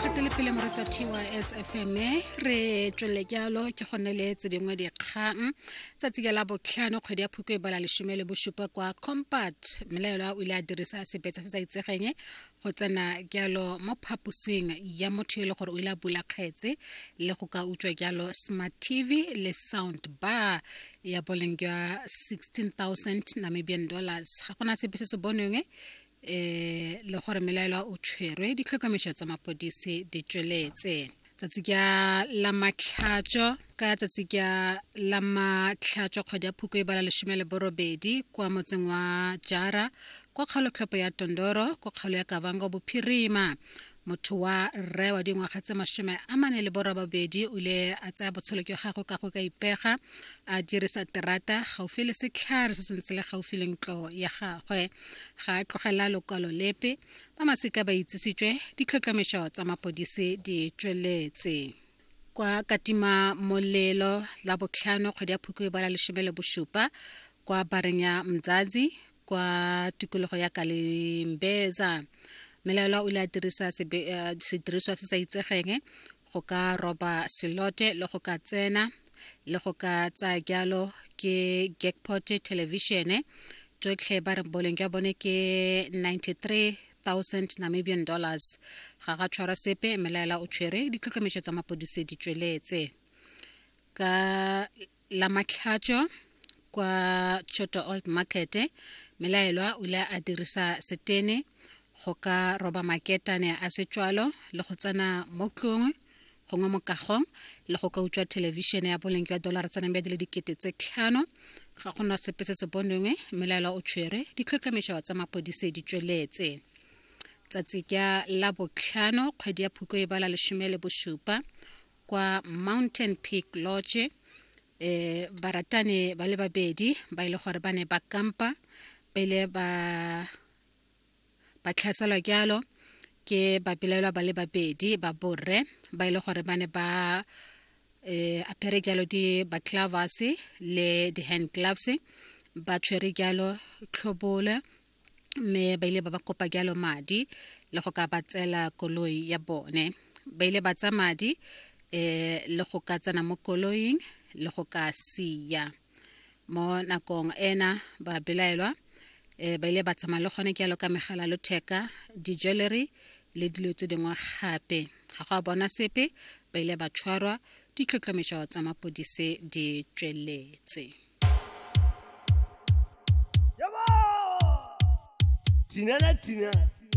gatele pele moretsa tys fm re tswelele jalo ke go ne le tse dingwe dikgang tsatsi ka la botlhano kgwedi ya phukwe e bala lesome le bosupa kwa compat mmelaelwa o ile a dirisa sebetsa se sa itsegeng go tsena jalo mo phaposing ya motho e le gore o ile a bula kgetse le go ka utswa jalo smart tv le sound bar ya boleng jwa 16000 namibian dollars ga gona sepe se se bonweng eh le gore melaelwa o tshwerwe ditlhokomediso tsa mapodisi di tsweletse tsatsi ka la matlhatso ka tsatsi ka la matlhatso kgwedi ya phoko e bala lesome le borobedi kwa motseng wa jara kwa kgaolotlhopo ya tondoro kwa kgaolo ya kavango bophirima motho wa rre wa dingwaga tse masome a mane le borobabedi o ile a tsaya botshelo jwa gagwe ka go ka ipega a dirisa terata gaufi le setlhare se sentse le gaufi le ntlo ya gagwe ga a tlogela lokwalo lepe ba masika ba itsisitswe ditlhotlhomišo tsa mapodisi di tsweletse kwa katima molelo la botlhano kgwedi ya phukwe ba la lesome le bosupa kwa bareng ya mzazi kwa tikologo ya kalimbeza melaelwa o ile a dirisa eh, sediriswa se sa itsegeng go ka roba selote le go ka tsena le go ka tsaya jalo ke jackpot television tsotlhe ba re boleng jwa bone ke 93 1000 Namibian dollars. Ga ga tshwara sepe mmelaela o tshwere ditlhotlhometso tsa mapodise di tsweletse. Ka la matlhatso kwa Choto Old Market mmelaelwa o ile a dirisa setene go ka roba maketane a setswalo le go tsena mo tlong gongwe mokago le go ka utswa thelebišene ya boleng jwa dolara tsa nambe di le dikete tse tlhano ga go na sepe se se bonwengwe mmelaelwa o tshwere ditlhotlhomišo tsa mapodise di tsweletse tsatsi ka la botlhano kgwedi ya phuko e bala lesome le bosupa kwa mountain peak lodge eh baratani ba le babedi ba ile gore ba ne ba kampa ba ile ba ba tlhaselwa jalo ke bapelaelwa ba le babedi ba borre ba e le gore ba ne ba um apere jalo di baclavas le di-hand gloves ba tshwere jalo tlhobole mme ba ile ba ba kopa jalo madi le go ka ba tsela koloi ya bone ba ile ba tsa madi um le go ka tsena mo koloing le go ka siya Mo nakong ena ba belaelwa eh, ba ile ba tsamaya le gone jalo ka megala lotheka, di-jewellery le dilo tse dingwe gape. Ga go a bona sepe, ba ile ba tshwarwa, ditlhotlhometšo tsa mapodise di tšweletse. Tina na Tina.